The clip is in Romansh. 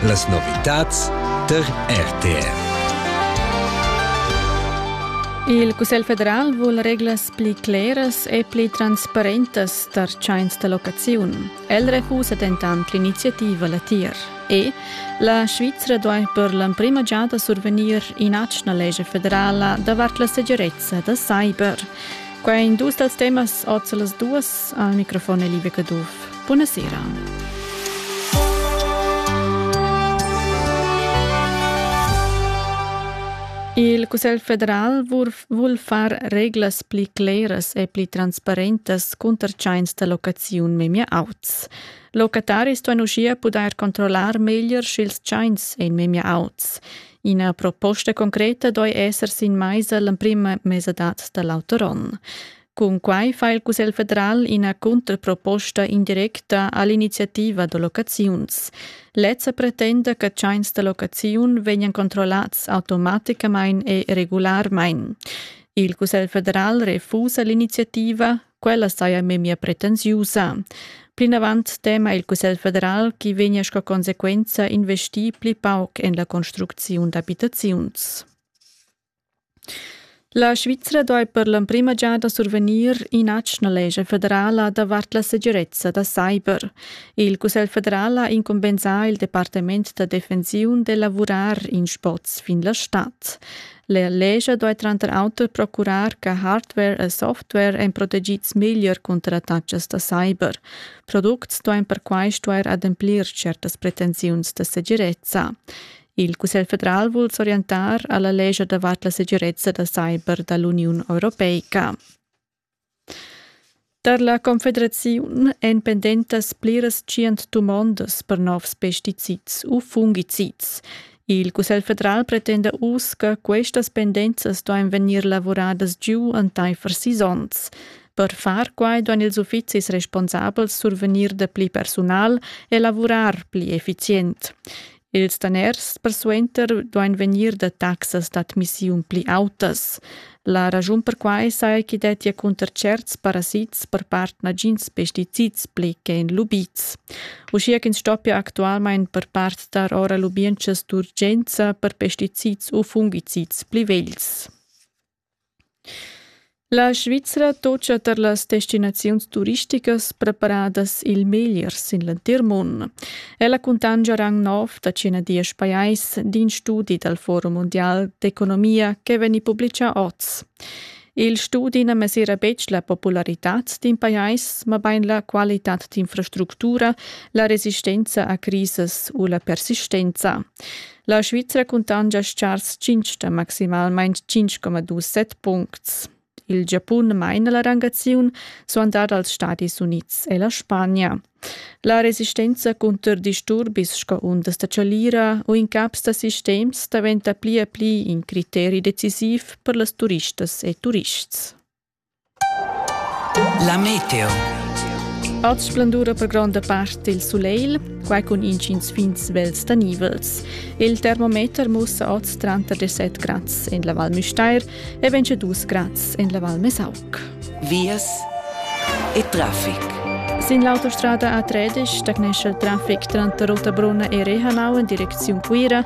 Las novitads tar RTR. Il Cussegl federal vul reglas pli cleras e pli transparentas tar tschains da locaziun. El refusa dentant l'iniziativa latier. E la Svizra duai per l'emprima giada survegnir in'atgna legge federala davart la segirezza da cyber. Qua in dus dals temas oz las duas Al microfon è Liebe Caduff. Buonasera. Il Cussegl federal vul far reglas pli cleras e pli transparentas cunter tschains da locaziun memia auts. Locataris ston uschia pudair controllar meglier sch'ils tschains èn memia auts. Ina proposta concreta doi esser sin maisa l'emprima mesadad da l'auter onn. Cun quai fa il Cussegl federal ina contraproposta indirecta all'iniziativa da locaziuns. Lezza pretenda che tschains da locaziun vegnan controllats automaticamain e regularmain. Il Cussegl federal refusa l'iniziativa, quella saja memia pretensiusa. Plinavant tema il Cussegl federal chi vegna sco conseguenza investir pli pauc en la construcziun d'abitaziuns. La Svizra duai per l'emprima giada survegnir in'atgna lescha federala davart la segirezza da cyber. Il Cussegl federal ha incumbensà il departament da defensiun d'elavurar in sboz fin la stad. La lescha duai tranter auter procurar che hardware e software èn protegids meglier cunter attatgas da cyber. Products duain perquai stuair ademplir tschertas pretensiuns da segirezza. Il Cussegl federal vul s'orientar alla lescha davart la segirezza da cyber dall'Uniun europeica. Tar la Confederaziun èn pendentas pliras tschient dumondas per novs pesticids u fungicids. Il Cussegl federal pretenda uss che questas pendenzas duain vegnir lavuradas giu entaifer sis onns. Per far quai duain ils uffizis responsabels survegnir dapli persunal e lavurar pli effizient. Ils daners persuenter duain vegnir da taxas d'admissiun pli autas. La raschun per quai saja ch'i dettia cunter tscherts parasits per part nagins pesticids pli che en lubids. Uschia ch'ins stoppia actualmain per part dar ora lubientschas d'urgenza per pesticids u fungicids pli vegls. La Svizra tocca tar las destinaziuns turisticas preparadas il meglier sin l'entir mund. Ella cuntanscha rang nov da cinadias pajais d'in studi dal Forum mundial d'economia che vegni publitgà oz. Il studi na mesira betg la popularitad d'in pajais, mabain la qualitad d'infrastructura, la resistenza a crisas u la persistenza. La Svizra cuntangia schars tschintg da maximalmain 5,27 puncts. Il Giapun maina la rangaziun, suandard als Stadis Unids e la Spagna. La resistenza cunter disturbis sco undas da chalira u incaps da sistems daventa pli e pli in criteri decisiv per las turistas e turists. La meteo. Oz splendura per gronda part il sulegl, quai cun intgins fins svels da nivels. Il termometer mussa oz tranter 17 grads en la Val Müstair e 22 grads en la Val Mesauc. Vias e traffic. Sin l'autostrada A13 stagnescha il traffic tranter Rotabrunna e Rehanau en direcziun Cuira